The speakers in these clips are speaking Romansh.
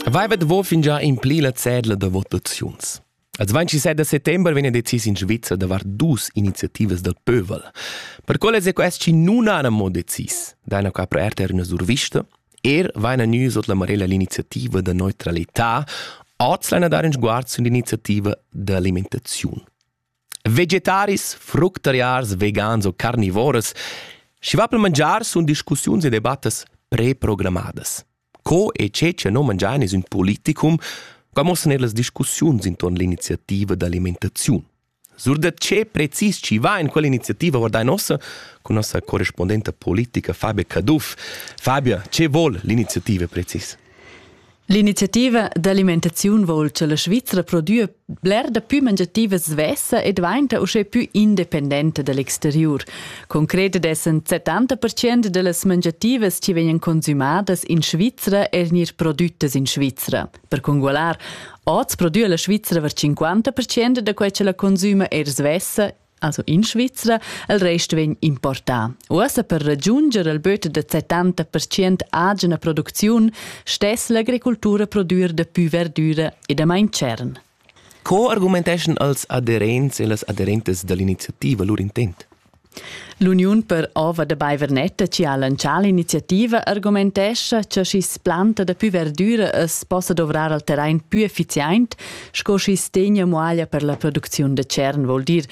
Vaiva davo fingià impli la cedla da votaziuns. Il 27 da settembre vegn decis in Svizzera davart dus iniziativas dal pövel. Per quelle è questi non hanno mo decis, da qua per RTR una survista, er vaina nü sot la marella l'iniziativa da neutralità, oz l'hanno dare in sguard sull'iniziativa d'alimentation. Vegetaris, fructariars, vegans o carnivoras, schi va pel mangiar sun discussiuns e debattas preprogrammadas. Co e che cha no mangiain es ün politicum, qua mossan ellas discussiuns intuorn l'iniziativa d'alimentaziun. Sur da che precis chi va in quell'iniziativa guardai nossa con nossa corrispondenta politica Fabia Caduff. Fabia, che vol l'iniziativa precis? L'iniziativa d'alimentaziun vol cha la Svizra prodüa bler dapü mangiativas svessa e dvainta uschè pü independenta da l'exteriur. Concret dessan 70% da las mangiativas chi vegnan consümadas in Svizra er gnir prodüttas in Svizra. Per congualar, oz prodüa la Svizra var 50% da quai cha la consüma er svessa Also in Svizra, il rest vegn importà. Uossa per ragiunger il böt da 70% agina producziun stess l'agricultura produir da pü verdüra e da main tschern. Co argumenteschan els aderents e las aderentes dall'iniziativa lur intent? L'Uniun per ova da Baivernetta ci ha lancià l'iniziativa argumentescha cha schi's planta da pü verdüra es possa dovrar al terrain pü efficient Sco schi's tegna muaglia per la producziun da tschern vuol dir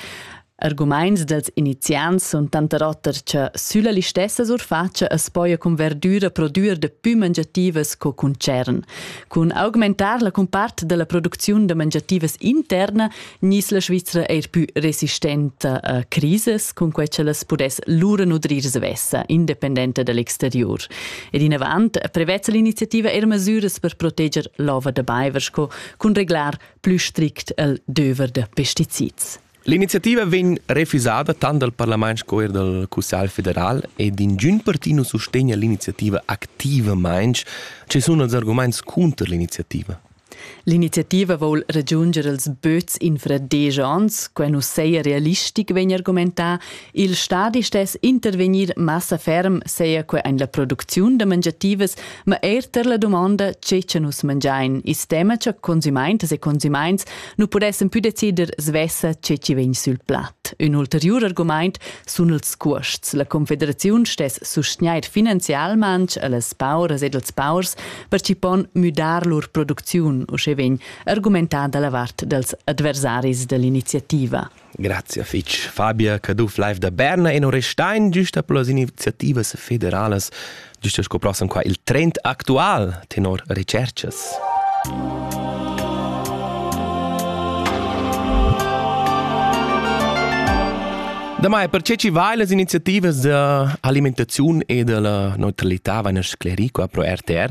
Argumaints dels iniziants sun tanter oter cha sülla listessa surfatscha as poja cun verdüra prodüer da pü mangiativas co cun tschern. Cun augmentar la cumpart da la producziun da mangiativas interna gnis la Svizra eir pü resistenta a crisis, cun que cha las pudess lura nutrir svessa, independenta da l'exteriur. Ed inavant prevezza l'iniziativa eir masüras per proteger l'ova da baiver sco cun reglar plü strict il döver da pesticids. L'iniziativa vegn refusada tant dal parlament sco er dal Cussegl federal ed ingün parti nu sustegna l'iniziativa activamaing. Ci sun els argumaints cunter l'iniziativa? L'iniziativa voul ragiunger els böts infra desch ans, quai nu saja realistic, vegn argumentà, Il stadi stess intervegnir massa ferm, seia que en la producziun da mangiativas, ma eir tar la dumonda tge cha nus mangiain, i's tema cha consumaintas e consumaints nu pudessan pü decider svessa tge chi vegn sül plat. Ün ulteriur argumaint sun ils cuosts. La Confederaziun stess sustgnair finanzialmaing a las pauras ed als paurs per chi pon müdar lur producziun, usche vegn argumentà da la vart dals adversaris da l'iniziativa. Grazie fitg Fabia Caduff live da Berna e non restein giusta per las iniziativas federalas giusta sco prossem qua il trend actual tenor recercas. Damai, per ce ci vai las iniziativas de alimentaziun e de la neutralità van sclerico pro RTR,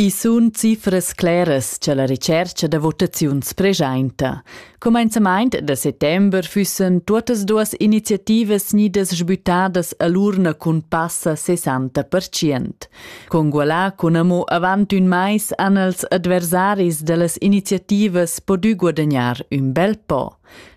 I sun cifras cleras cha la retschercha da votaziuns preschainta. Cumenzamaint da settember füssen tuottas duas iniziativas gnidas sbüttadas a l'urna cun passa 60%. Congualà cun amo avant ün mais han els adversaris da las iniziativas podü guadagnar ün bel po.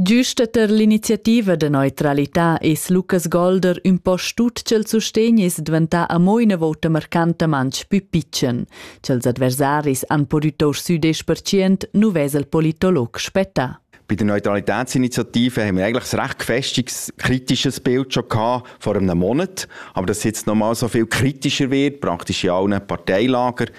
Giusta tar l'iniziativa da neutralità es Lukas Golder ün po stut ch'el sustegn es dvantà amo üna vouta marcantamaing pü pitschen. Cha'ls adversaris han pudü tour sü 10% nu vesa il politolog spettà. Bei der Neutralitätsinitiative haben wir eigentlich ein recht gefestigtes, kritisches Bild schon gehabt vor einem Monat. Aber dass es jetzt nochmal so viel kritischer wird, praktisch in allen Parteilager,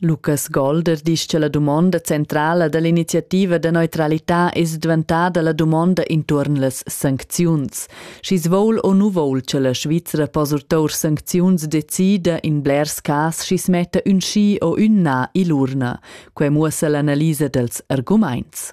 Lucas Golder disch che la dumonda centrala da l'iniziativa da neutralità es dvantada la dumonda intuorn las sancziuns. Schi's voul o nu voul che la Svizra po surtour sancziuns decida in blers cas schi's metta ün schi o ün na ill'urna. Quai muossa l'analisa dals argumaints.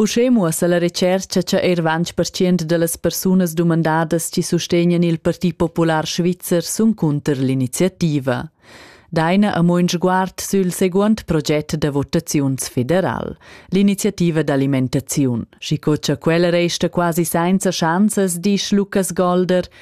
Uschè muossa la retschercha cha eir ventg pertschient da las persunas dumandadas chi sustegnan il Parti Popular Svizzer sun cunter l'iniziativa. Daina amo ün sguard sül seguond proget da votaziuns federal, l'iniziativa d'alimentaziun. Schi co cha quella resta quasi sainza schanzas, disch Lukas Golder,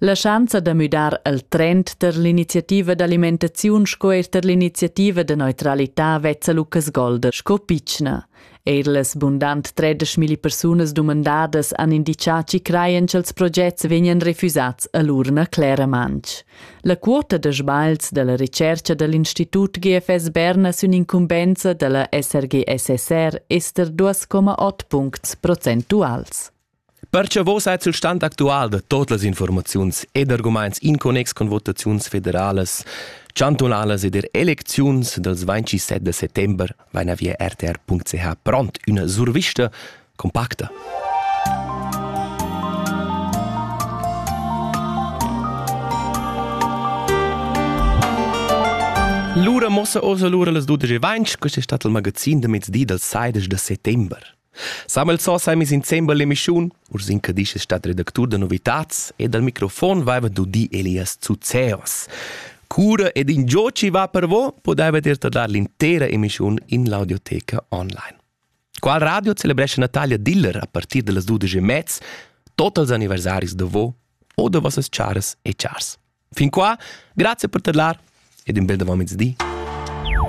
La schanza da müdar il trend per l'iniziativa d'alimentaziun sco er per l'iniziativa da neutralità vezza Lucas Golder sco pitschna. Eir las bundant 13.000 persunas dumandadas han indichà chi crajan cha'ls progets vegnan refusats a l'urna Clara Mansch. La quota da sbagls da la recercha da l'Institut GFS Berna sün incumbenza da la SRG-SSR ester 2,8 puncts procentuals. Perche vos ait sul stand actual da tot las informaziuns ed argumaints in connex con votaziuns federalas, chantunalas ed er elecziuns dals 27 da settember vaina via rtr.ch pront üna survista compacta. Lura mossa osa lura las 12.20, questo è stato il magazin da mezdi dal 16 da settembre. Samuel Zoss ha emis insembel l'emischun. Urs Incadisch es stat redactur da novitats e dal microfon vaiva dudi Elias Zuzeos. Cura ed ingio chi va per vo pudaiva dir da dar l'intera emischun in l'audioteca online. Qual radio celebrescha Natalia Diller a partir da las 12 e mez tot als anniversaris da vo o da vossas charas e chars. Fin qua, grazie per tadlar ed in bel davant mezdi.